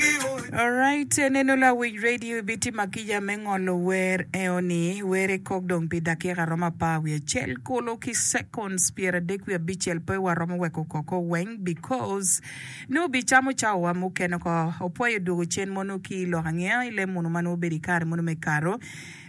Alright, eh, neno lawic radio ibitima kica me ngolo wer eo ni, were kok dong pi dakika romo apar wiye acel kulu ki seconds pyer adek wiye abicel pe waromo weko koko weng because nongo bi camo cawa wa mukene oko. Opwayo dwogo cen mono ki lok angeya i leb mono ma nongo obedo i kare mono me Kato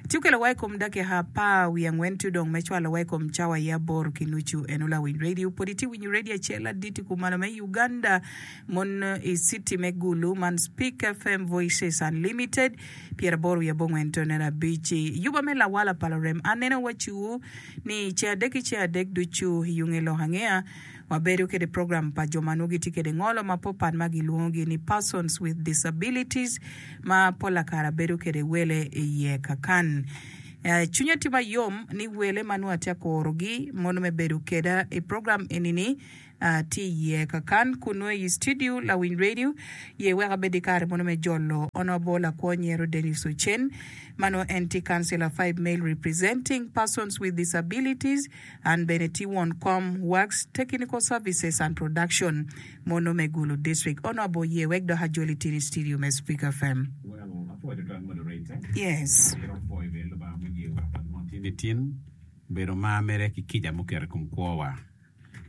ci okelo wa i kom dakika apar wiye angwen to dong me cwalo wa i kom cawa aye aboro ki nucu. Eno lawic radio pwod itye winyo radio acel aditi kumalo me Uganda. Mon i citi me Gulu man Spik FM Voices Unlimited pyeraboro wiye abongwen tone abic i yuba me lawala pa lurem anena waciwu ni ce adek ki ce adek ducu i unge lok angeya wabedo kede program pa jo ma nwo gitye kede ngolo ma popat ma gilwongo gi ni Persons with Disabilities ma pola kara bedo kede wele i ye kakan cwinya tye mayom ni wele ma nwo atye akuro gi mono me bedo keda i program eni ni. Atye i yee kakan kun nongo iyi studio lawiny radio ye weko abed i kare mono me jolo honourable akwo nyero Dennis Ocen ma nongo en tye councilor five male representing persons with disabilities an bene tye won kom works techinical services and production mono me Gulu district honourable ye wek dok ajol i tini studio me Speaker FM.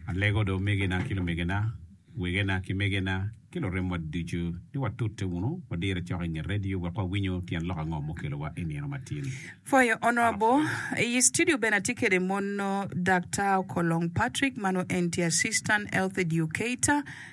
Alego do omegina ki lumegina, wegena ki megena, ki luremwa ducu ni watute wunu wadire cok i nge redio wek wawinyo tyen lok ango mukelowa i nino matin. Foyo onongo abo. I i studio bene atye kede mono Daktar Okolong Patrick, mano en tye Assistant Health Educator.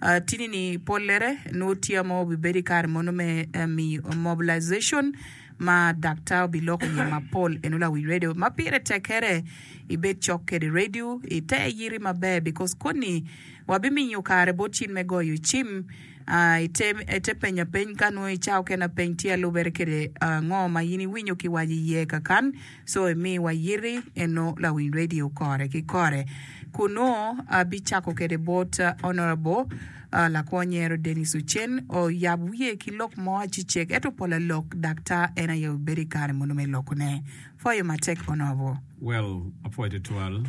Atini ni pollere nongo tye ma obibedo i kare mono me miyo mobilization ma daktar obiloko iye mapol eno lawic radio ma pire tekkere ibed cok kwede radio ite yiti maber because koni wabimiyo kare bot cin me goyo cim ah, ite, ite penya peny ka nongo i cawa okene peny tye alubere kwede ah, ngo ma in iwinyo ki waco iye kakan. So imi wayiti eno lawiny radio kore ki kore kun nongo abicako kede bot Honourable lakwony Nyero Denis Ocen oyab wiye ki lok mo acecek eto pol alok dak tar en aye obedo i kare mono me loko ne. Pwoyo matek Honourable. Well apwoyo twatwal,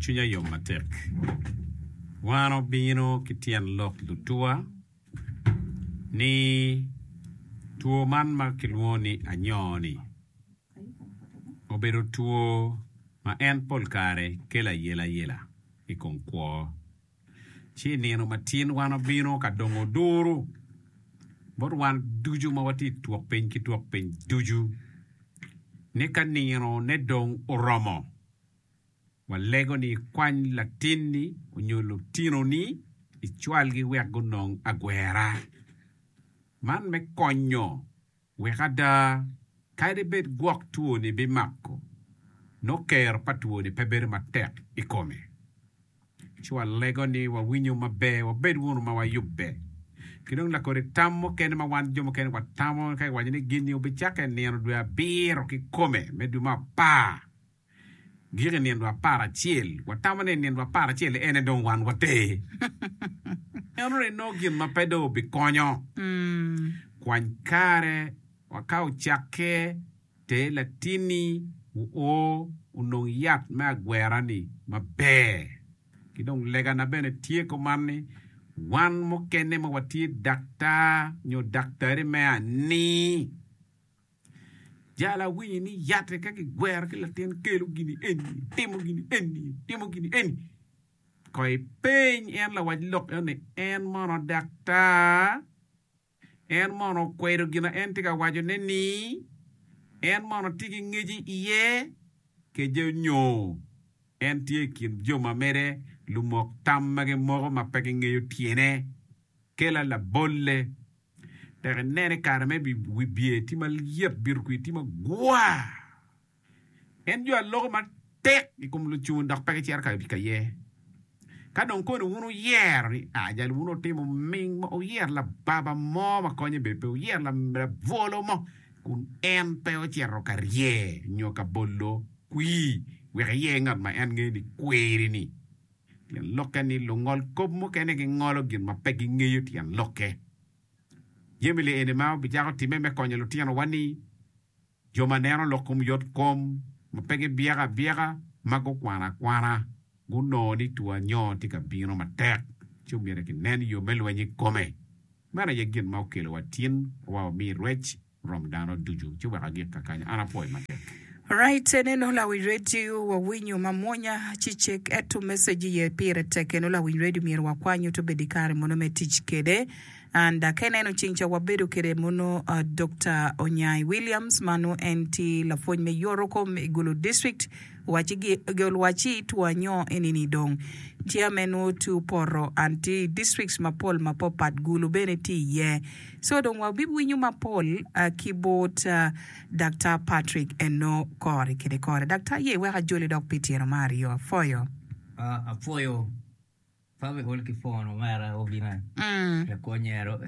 cwinya yom matek. Wan obino ki tyen lok lutuwa ni two man ma kilwongo ni anyoo ni. obedo two ma en pol kare kelo ayelayela i kom kwo. Ci i nino matin wan obino ka dongo duru bot wan ducu ma watye i twok piny ki twok piny ducu, ni ka nino ne dong oromo, walego ni ikwany latinni onyo lutinoni icwalgi wek gunong agwera man me konyo. Wek ada, kadi bed gwok twoni bimako, nongo kero pa twoni pe bedo matek i kome. Ci walego ni wawinyo maber, wabed wunu ma wayubbe. Ki dong lakodi tam mukene ma wan jo mukene watamo, ka giwaco ni gin-ni wubicakke nino dwe abiro kikome, me dwe me apar. Giko i nino apar acel, watamo ni i nino apar acel-li ene dong wan water. Enonongo inongo gin ma pe dong obikonyo. Kwany kare wa ka ocakke, ter latinni oo onong yat me agwera-ni maber. Ki dong legana bene tye kuman ni, wan mukene ma watye daktar nyo daktari me ani, Jalo awinyo ni yatte ka kigwero ki latin kelo gini eni, timo gini eni, timo gini eni. Ko ipeny en lawac lok eno ni en mono daktar, en mono okwedo gina en tye ka wacone-ni, en mono tye ki ngeci iye, kece nyo en tye i kin jo ma mere lumok tam ma gimoko ma pe gingeyo tyene. Kela labolle Dok ineno i kare me wibye tye ma lyet, bito kwir tye magwar. Pien jo a loko matek i kom lucun dok pe gicito ka i kaye. Ka dong koni wun wuyero ni, Ajali wun wutimo ming mo, wuyer lababa mo ma konye bene pe, wuyer labwolo mo, kun en pe ocito ka rye nyo ka bolo kwir, wek iye ngat ma en ngeyo ni kwiri-ni. Pien lokke ni lungol kop mukene gingolo gin ma pe gingeyo tyen lokke. Jami li eni ma wubicako timme me konyo lutinowa-ni, jo ma neno lok kom yot kom, ma pe gibyeko abyeka, ma gukwano akwana, gunongo ni two anyoo tye ka bino matek, ci omyero kinen yo me lweny i kome. Meno aye gin ma okelowa tin wa wami rwec Rom dano ducu ci wek agik kakany, an apwoyi matek. Right eneno lawiny radio wawinyo mamwonya ci cek eto message iye pire tek eno lawiny radio myero wakwany oto bedo ikare mono me tic kede and da ka ineno cing ca wabedo kede mono Doctor Onyai Williams ma nongo en tye lapwony me yoro kom i Gulu district waci gi gol waci two anyo enini dong tye ame nongo two poto and tye i districts mapol mapapat Gulu bene tye iye So dong wabiwinyo mapol ki bot Daktar Patrick eno kore kede kore. Daktar aye iweko ajoli dok pi tyeno ma aryo. Apwoyo. Apwoyo Papa iol ki phone omera obina me kwo nyero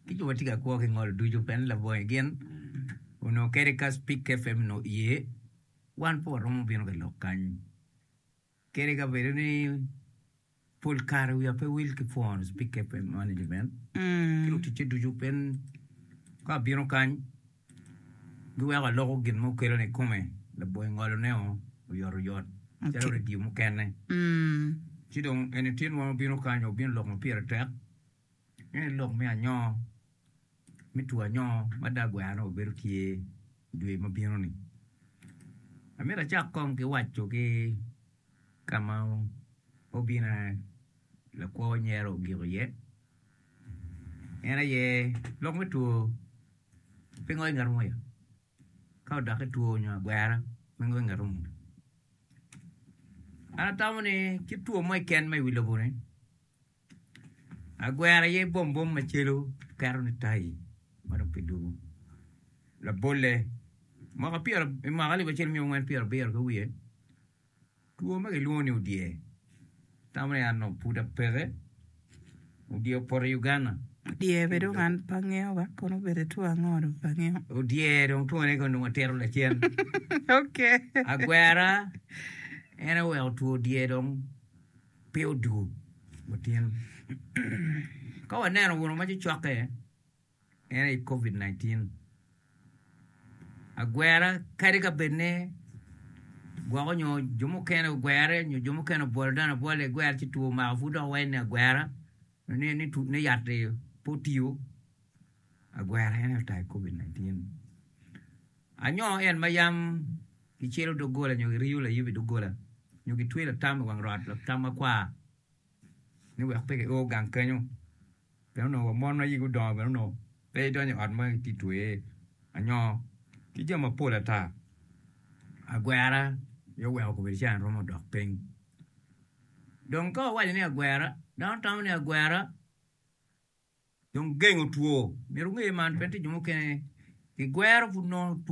ki jo ma tye ka kwo ki ngol ducu pien labongi gin onongo kadi ka Speak FM onongo iye wan pe waromo bino ka lok kany. Kadi ka bedo ni pol kare wiya pe wil ki pwony pi cape management ki luticce ducu pien ka abino kany giweko aloko gin ma okelona i kome labongo ngolone oyotoyot calo redio mukene ci dong eni tin wang obino kany obino lok ma pire tek Nen i lok me anyongo me two anyongo ma dong agweno nongo bedo tye i dwe ma bino ni. Amito acak kong ki waco ki ka ma obina lakwo nyera ogiko iye en aye lok me two pingo inge rwom aye ka odokke two nyo agwera pingo inge rwom an atamo ni ki two mo keken ma i wi lobo ni. Agwero aye bom bom macelu keto ni tayi ma dong ki dugu labole mwaka pyero i mwaka alip acel myero ongwen pyero abiro ki wiye two ma ki lwongo ni odye tamo ni an dong pud apeke odye opoto i Uganda Odyer be dong an pe angeyo ba kono obedo two ango dong pe angeyo. Odyer dong two ne kono dong atito lacen. Okay. Agwera en oweko two odyer dong pe odur otyen. Ka waneno gunu ma cocokke en aye Covid 19. Agwera kadi ka bed ni gwoko nyo jo mukene ogwere nyo jo mukene obwolo dano abwola i gwer ci two omako pud dok wayine agwera ni ni tu ni yat-ti pe otiyo agwera en aye otayo Covid 19. Anyo en ma yam Gicelo doggola nyo giriyo layub i doggola, nyo gitweyo latam i wang rot latam makwar ni wek pe gio gang kenyo. Pien onongo wa mon ma igi odongo bene onongo pe idonyo i ot ma itye ka tweye anyo ki jami mapol ata. Agwera aye oweko obedo calo an romo dok piny. Dong ka wawaco ni agwera, dano tamo ni agwera. Dong gengo two. Myero wunge man pien tye jo mukene gigwero pud nongo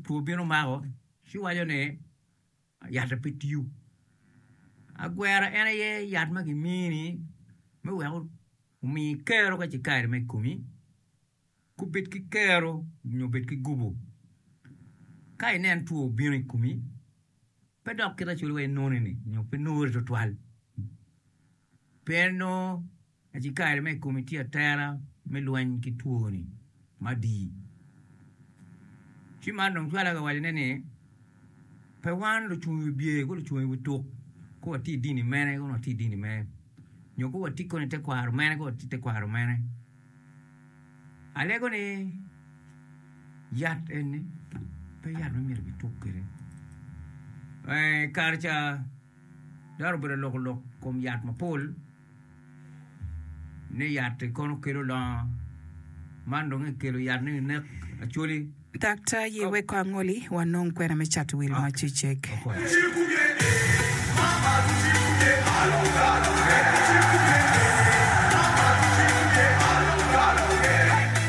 two bino mako ci waco ni yatta pe tiyo. Agwera en aye yat ma gimini me wek omi kero ka ce kare ma i komi ka obed ki kero nyo obed ki gubo. Ka inen two obino i komi pe dok kite calo wa inone-ni nyo pe nure tutwal pien nongo Acikari ma i Komitti Atera me Lweny ki Twoni madii, ci man dong cwale ka wacone ni, Pe wan lucung i wi bye ko lucung i wi tuk ko watye i dini mene ko watye i dini mene, nyo ko watye kono i tekwaro mene ko watye i tekwaro mene. Alego ni yat eni pe yat ma myero kituk kwede. I kare ca dano obedo alok olok i kom yat mapol. ni yat-ti kono kelo longo, man dong ekelo yat ni ginek Acholi. Daktar ye weko angoli wanong kwena me cato wil ma cecek.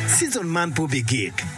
Season man pe obigik.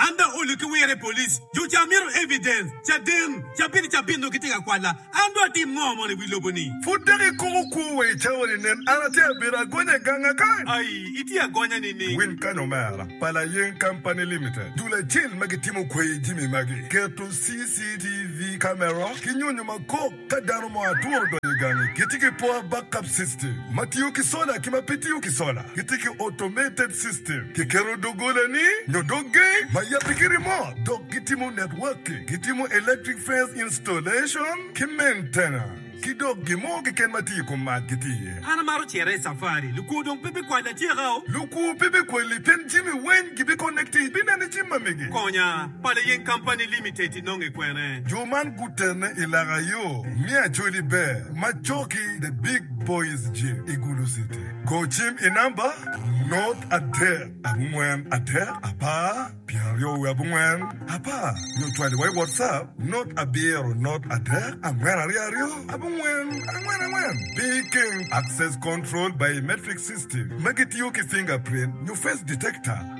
An dok olu ki wire police jo ca mito evidence caden cabit cabit nongo gitye ka kwala an dong atim ngo mono iwi lobo ni. Pud dok ikumo kwo wa i cawa ni nen an atye abedo agonya ganga kany. Ayi itye agonya nining. Win kany omera, pa Layeng Company Limited, dul acel ma gitimo kwayi jimi magi, keto CCTV camera ki nyonyo makok. Ka dano mo adwong odonyo i gangi, gitye ki poor backup system ma tiyo ki sola ki ma pe tiyo ki sola. Gitye ki automated system, kiketo doggolani nyo dog gate ma yabbe ki remote, dok gitimo networking, gitimo electric fence installation ki maintenance, ki dok gin mo keken ma tye i kom mac gitye iye. An amaro cito i safari. Lukwo dong pe bikwalla atyeka-o. Lukwo pe bikwalli pien jami weng gibikonekti ibineno i jami ma mege. Konya, Pala Yeng Company Limited. inonge kwene. Jo man gutene i laka yo me Acholi Ber ma coki The Big Boys Gym i Gulu City. Go cim i namba not adek abongwen adek apar pyeraryo wiye abongwen apar nyo cwali wa i WhatsApp not abiro not adek angwen aryo aryo abongwen angwen angwen. Picking, Access Control Biometric System ma gitiyo ki fingerprint nyo face detector.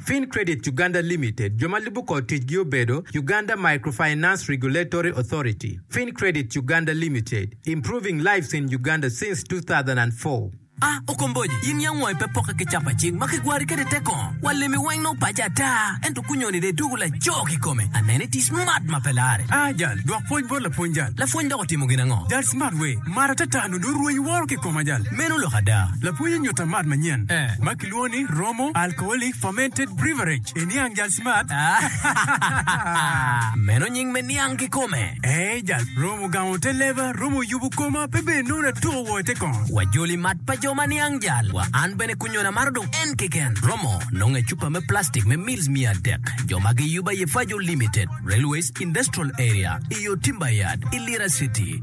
Fin Credit Uganda Limited, jo ma lubo kor ticgi obedo, Uganda Microfinance Regulatory Authority, Fin Credit Uganda Limited, Improving Lives in Uganda since 2004. A Okomboji, in yam wangi pe pokke ki capa cik ma kigwari kwede te kong? Wa limi weng nongo paci ata, ento kunyoni dong ituku laco kikome. Aneno iti smart ma pe larre. A Jal, dwok pwony bot lapwony jal. Lapwony dok otimo gin ango? Jal, smart wee, mara ata ata nongo dong rwenyo woro kikoma jal. Meno lok ada. Lapwony onyuta mat manyen ma. Lwongo ni romo alcoholic fermented beverage i niang jal smart aa. Meno nying me niang kikome. Ee jal romo gango te leba, romo yubu koma pe bed nono atuko woo ite kong. Wa joli mat pa jo ma niang jal wa an bene kunyona maro dong en keken. Romo nongo e cupa me plastic me mils miya adek jo ma giyuba ye Fajo Limited, Railways Industrial Area, iyo Timber Yard, i Lira City.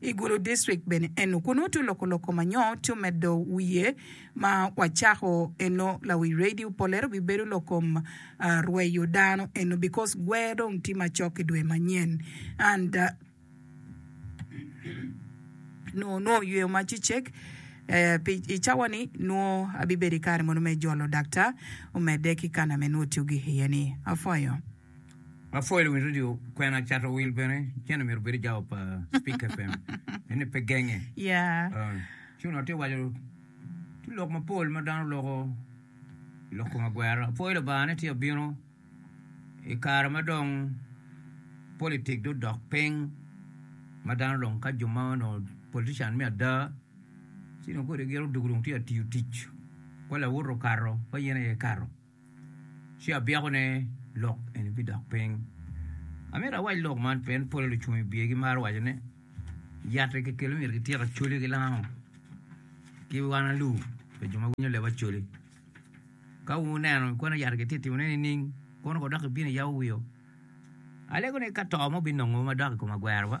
I Gulu District bene eno kunnu tu loko loko ma nyo tu medo wiye ma wa cako eno lawic radio polero bi bedo lokom ah rweyo dano eno because gwer dong ti macok i dwe manyen and ah nwo nwo yweyo ma cecek eh pi i cawa ni nwo abi bedo i kare mono me jolo daktar omede ki kana me nwo tu gi iye ni afoyo. Mapol i wi redio kwena cato wil bene cen omyero obed i jawa pa Speak FM ene pe genge. Yeah. Cun atye waco tye lok mapol ma dano loko i lok kom agwera. Apwoyo Lubanga ni tye abino i kare ma dong politik do dok piny ma dano dong ka jo ma onongo politician me ada ci dong kodi giro dog dong tye atiyo tic kwa lawot okato kwa yen aye ikato. ci abyekone lok eni bidok piny. Amito awac lok man pien pole lucung i biye gimaro waco ni yat-ti kikelo myero kityek Acholi ki Lango ki wan alu pi jo ma winyo leb Acholi. Ka wuneno ikono yat-ti kitye ka timone nining kono kodok ibino iyawo wio? Alego ni ka to mo binongo madok i kom agwerowa.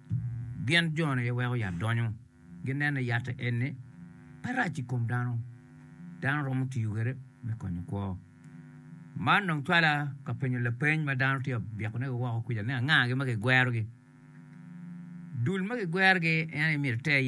Gin jo-ni aye weko yat donyo. Gineno ni yatte eni pe rac i kom dano. Dano romo tiyo kwede me konyo kwo. Man dong cwala ka penyo lapeny ma dano tye ka byekonegi woko kwija ni angagi ma kigwerogi. Dul ma kigwerogi en aye myero iter iye.